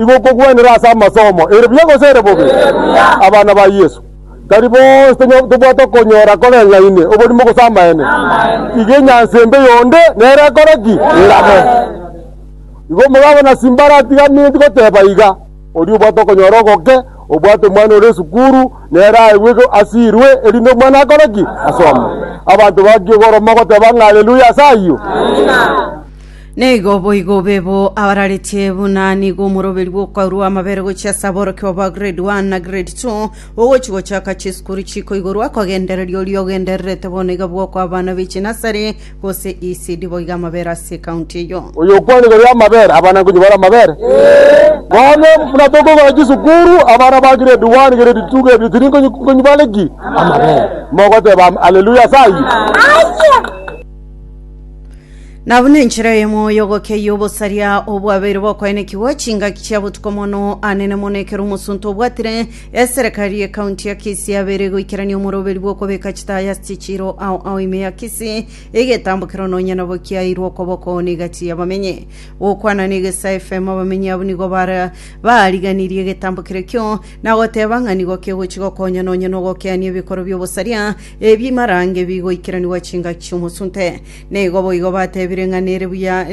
Igo okogwenera ase amasomo, ere buya gose ere bobe? Abana ba Yesu, tari bonsi tonyo- tobwate okonyora koreng'aine oborimo gose amaene. Iga enyansa embe yonde nere ekore ki? Erabe. Igo omogabo na Simbara atigaminti goteba iga, oria obwate okonyora ogoke, obwate omwana ore esukuru, nere aegwe go- asirwe, erinde omwana akore ki? Asome. Abanto bakiogoroma goteba ng'a Haleluya ase ayio. Naigo boigo bebo abararetie buna nigo omoroberi bw'okoirwa amabere gochia ase aborokigwa ba grade 1 na grade 2 ogochi gochaka chisukuru chikoigorwa kogendereria oria ogendererete bono iga bwokwa abana b'echinasari gose ECD boiga amabere ase ekaunti eyo. Oyo okwane igoro y'amabere, abana nkonyebare amabere. Bono buna tokoigora chisukuru, abana ba grade 1, grade 2, grade 3 nkonyi- nkonyebare ki? Amabere. Mogoteba am- haleluya ase ayio. Nabo nenchera eyemo y'ogokia y'obosaria obwabeire bokoenekigwa chingaki chia botuko mono anene mono ekero omosunte obwatire eserekari ye county ya Kisii abeire goikerania omoroberi bw'okobeka chitaya ase chichiiro ao ao ime ya Kisii egetambo kero nonya nabo kiaeirwe okoboko n'egati y'abamenyi. Gokwana n'egesa FM abamenyi abwo nigo bara bariganirie egetambo kere kio na goteba ng'a nigo kegochi gokonya nonya nogokeania ebikoro by'obosaria ebimarange bigoikeranigwa chingaki chi'omosunte. Nigo boigo batebire ng'a nere buya,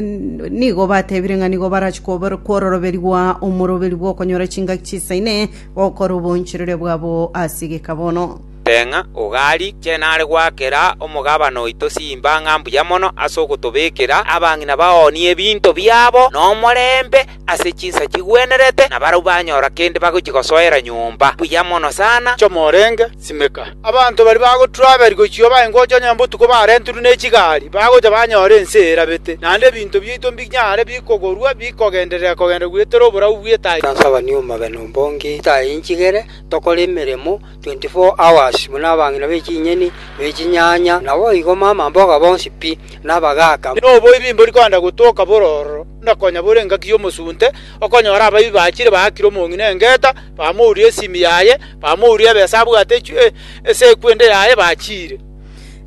nigo batebire ng'a nigo barachie kobor- kwororoberigwa omoroberi bw'okonyora chingaki chisaine gokora oboonchoreria bwabo ase egeka bono. Teng'a ogari chene are goakera omogabane oito chimbang'a mbuya mono ase ogotobekera abang'ina baonie ebinto biabo nomorembe, ase chinsa chigwenerete, na barabwo banyora kende bagochia gosoera nyomba buya mono sana. Choma orenge, simeka. Abanto baria bagotraveria gochia oba ingo ocha onye botuko barenterwe nechigari, bagocha banyore ense erabete, naende ebinto biaito mbinyare bikogorwa bikogenderera kogenda goetera oborabu bw'etaichi. Tonsabani omobe nombonge, titainchigere tokore emeremo, 24 hours, buna abang'ina be chinyeni, be chinyanya, naboigo mamamboga bonsi pi, na abagaaka. Noboibi mbori kogenda gotoka bororo, na konya bore engaki y'omosunte, okonyora abaibi bachire baakire omong'ina engeta, bamouria esimi yaye, bamouria ebesa abwate echwe, ase ekwende yaye, bachire.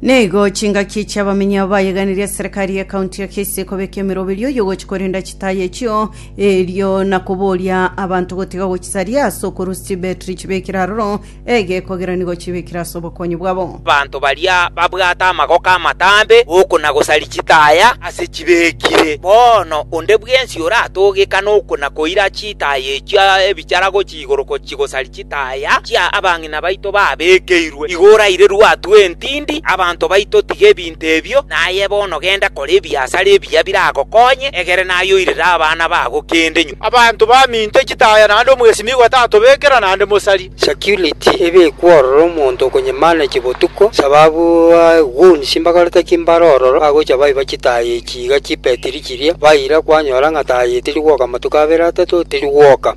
Naigo chingaki chi'abamenyi abo bayeganirie eserekari y'ekaunti ya Kisii ekobeka emeroberio y'ogochi korenda chitaaya echio, erio na koboria abanto gotiga ogochisaria ase okorua stibetri chibekire aroro egeko egeranigo chibekire ase obokonyi bwabo. Abanto baria babwate amagoko amatambe g'okona-gosari chitaaya ase chibekire. Bono onde bwensi oratogekane okona-koira chitaaya echio ebichara gochia igoro ko chigosari chitaya chia abang'ina baito babekeirwe. Igo oraire rwatwa entindi abanto baito tiga ebinto ebio, naye bono genda kora ebiasara ebiya biragokonye, egere naye oirere abana bago kende nyuma. Abanto baminto chitaya naende omwesimigwa tatobekera naende mosari. Security ebe ekwo ororo omonto okonyemaneki botuko sababu ba goons mbakorete ki mbare ororo bagocha baiba chitaya echi iga chibetiri chiria baira kwanyora ng'a taya eye teri gwoka matuko abere atato teri gwoka.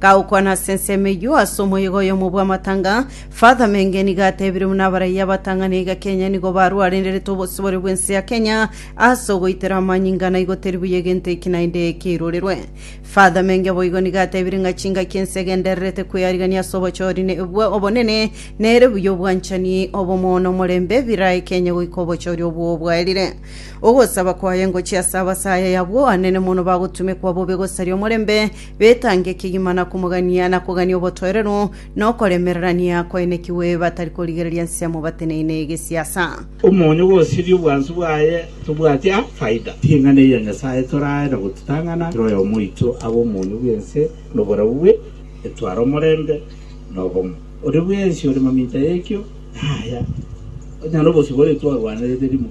Gagokwana ase ensemo eyio ase omoyega oyomo bw'amatanga, Father Menge nigo atebire buna abaraiyo abatang'ani iga Kenya nigo barwarenderete obosibore bw'ense ya Kenya ase ogoitera amanyinga na igo teri buya egento eki naende keirorerwe. Father Menge boigo nigo atebire ng'a chingaki ense egendererete kwearigania ase obochori ne- bwa obonene nere buya obwanchani, obomo na omorembe birae Kenya goika obochori obwo bwaerire. Ogosaba kwaye ngochie ase abasayaya abwo anene mono bagotumekwa bobe gosaria omorembe betange kegima na komogania na kogania obotoereru, na okoremererania kwaenekigwe, batari korigereria nsemo bateneine egesiasa. Omonyo gosiria obwansu bwaye tobwati a faida. Ring'ana eria Nyasae torae na gotutang'ana kera oyomo oito abe omonyo bw'ense noboreu bwe etware omorembe na obomo. Oria bwensi ore mamincha y'ekio naya, onye nobosio boretwarwanerete rimo.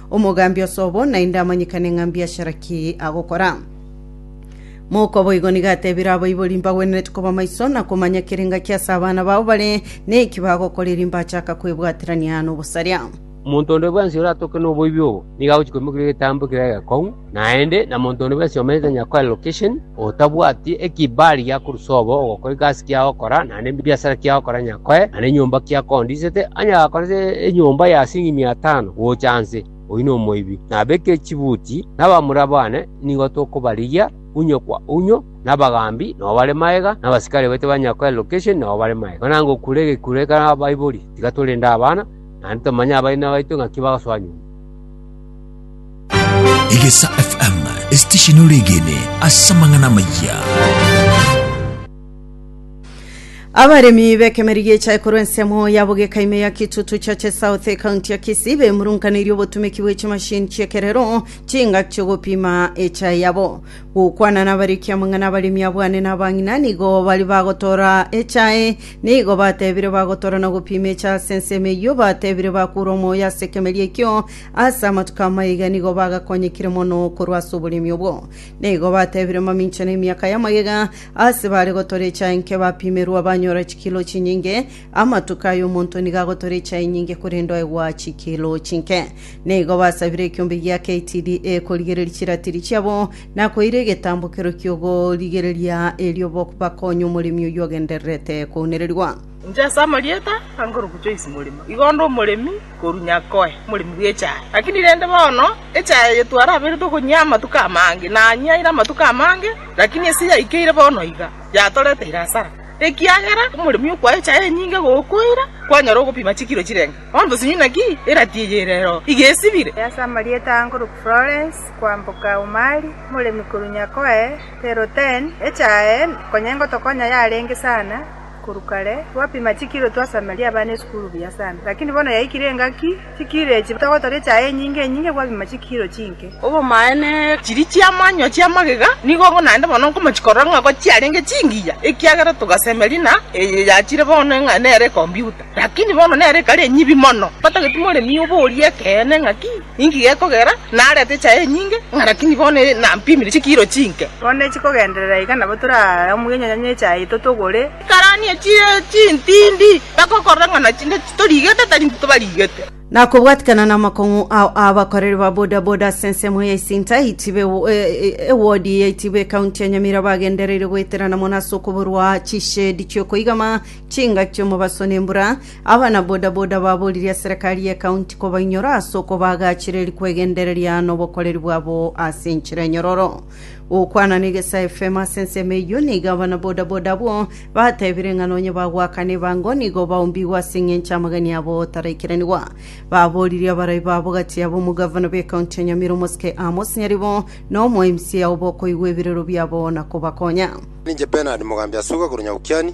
Omogambi osobo naende amanyekane ng'a mbiashara ki agokora. Mouko boigo nigo atebire abaibori mbagwenerete koba maiso na komanya kera engaki ase abana bao bare neki bagokora erio mbachaka kwebwaterania nobosaria. Omonto onde bwensi oratoke noboibi obo, nigo agochia koimokeria egetambo kere egekong'u, Naende na monto onde bwensi omenyete nonya koa location, otabwati ekibali giakorusa obo ogokora egasi kiao ogokora, naende ebiasara kiao ogokora nonya koe, naende enyomba kiao koa ondisete, onye agakora ase enyomba ya siringi mia tano gocha nse, oyio nomoibi. Nabeke chibuti, na abamura bane nigo tokobarigia, unyo kwa unyo, na abagambi nao bare magega, na abasikari baito ba nonya koa location nao bare magega. Mana ngokure egekuro ekero abaibori, tiga torende abana, naende tomanye abaina baito ng'aki bagosoa nyomba. Egesa FM, esitesheni ore egene ase amang'ana amaya. Abaremi b'ekemeri gi'echae korwa ensemo ya bogeka ime ya Kitutu Chache South ekaunti ya Kisii bemurunkaneirie obotumeki bwe chimashini chi'ekerero chingaki chi'ogopima echae yabo. Gokwana nabariki amang'ana abaremi abwane na abang'ina nigo bari bagotora echae nigo batebire bagotora na gopima echae ase ensemo eyio batebire bakura omoyo ase ekemeri ekio Ase amatuko amaiga nigo bagakonyekire mono korwa ase oboremi obwo. Nigo batebire mamincha na emiaka y'amagega ase bare gotora echae nke bapimerwa banyora chikilo chinyinge. Amatuko aya omonto nigo agotora echae enyinge korende oegwa chikilo chinke. Nigo basabire ekiombe gia KTDA korigereria chiratiri chiabo na koira egetambokero ki'ogorigereria erio bo- bakonye omoremi oyio ogendererete kounererigwa. Inche ase amarieta angorokwa Joyce Morimo, igo onde omoremi korunya koe moremi bw'echaye. Lakini rende bono echaye eye twaraberete okonyia amatuko amange, nanyiaire amatuko amange, lakini ase yaikeire bono iga, yatoreteire asara, ekiagera omoremi okwaa echaye enyinge gokoira, kwanyora ogopima chikiro chirenge bondo sonye naki erati eye ere ero iga esibire. Ase amarieta aa nkoroku Florence kwamboka Umari, moremi korunya koe Terre-Hautaine, echaye konya engotokonya yarenge sana, Korwa kare gwapima chikiro twasameria abana esukuru buya sana, lakini bono yaikire engaki chikiro echi togotoria echaye enyinge enyinge gwapima chikiro chinke. Obomaene, chiria chi'amanywa chi'amagega nigo naende bono nkomochia korora ng'a ko chiarenge chingiya, ekiagera togasemeria na eye yachire bono ng'a nere ekombiuta, lakini bono nere ekare enyibi mono. Batageti moremia oborie ekeene ng'aki? Inki gekogera narete echaye enyinge, ng'a rakini bono nampimire chikiro chinke? Bono nechikogenderera iga nabo toraramue enyanya y'echaye totogore. Karani echire chintindi, bagokorora ng'a nachinde titorigete tari ntitobarigete. Na kobwatikana namakong'u ao aabakoreri ba boda boda ase ensemo ya Isinta yaitiba ewo- e- e- ewodi yaitiba ekaunti ya Nyamira bagendereire goeterana mono ase okoborwa chishedi chiokoigama chingaki omobaso nembura Abana bodaboda baboririe Serekari y'Ekaunti kobainyora ase okobaagachera erio kwegendereria nobokoreri bwabo ase enchera enyororo. Gokwana na Egesae FM ase ensemo eyio, nigo abana bodaboda abwo batebire ng'a nonye bagoakana ebango nigo baombigwe ase eng'encho amagani abo taraikiranigwa. Baboririe abarai babo gati yabo omogavana bw'Ekaunti ya Nyamira Omosike Amos Nyaribo na omo mca obokoigwa ebirero biabo na kobakonya. Ninche Bernard Mogambi Asuga korwa Nyabukiani.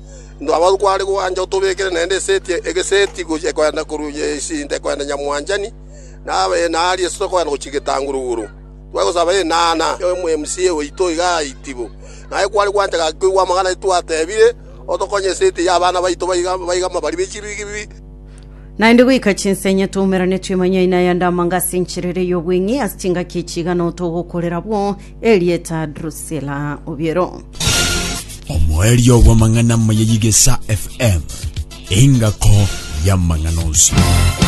Ntwabau kware gwancha otobekere naende eseti egeseti gochia ekoenda korwa nyesinte ekoenda nyamwanchani, na abene aria ase tokoenda gochia getanguruguru. Twagosaba enana y'omoMC oito iga aitibu. Naye kware gwancha gaki koigwa amang'ana aye twatebire, otokonye eseti y'abana baito baiga baiga amabari be chibigibi. Naende goika chinsenye twaumeranetwe manyaina ya Ndamanga ase enchera ere y'obweng'e ase chingaki echi iga notogokorera abwo Erieta Drusila Obiero. Omoerio bw'amang'ana amaya y'Igesa FM, engako y'amang'ana onsi.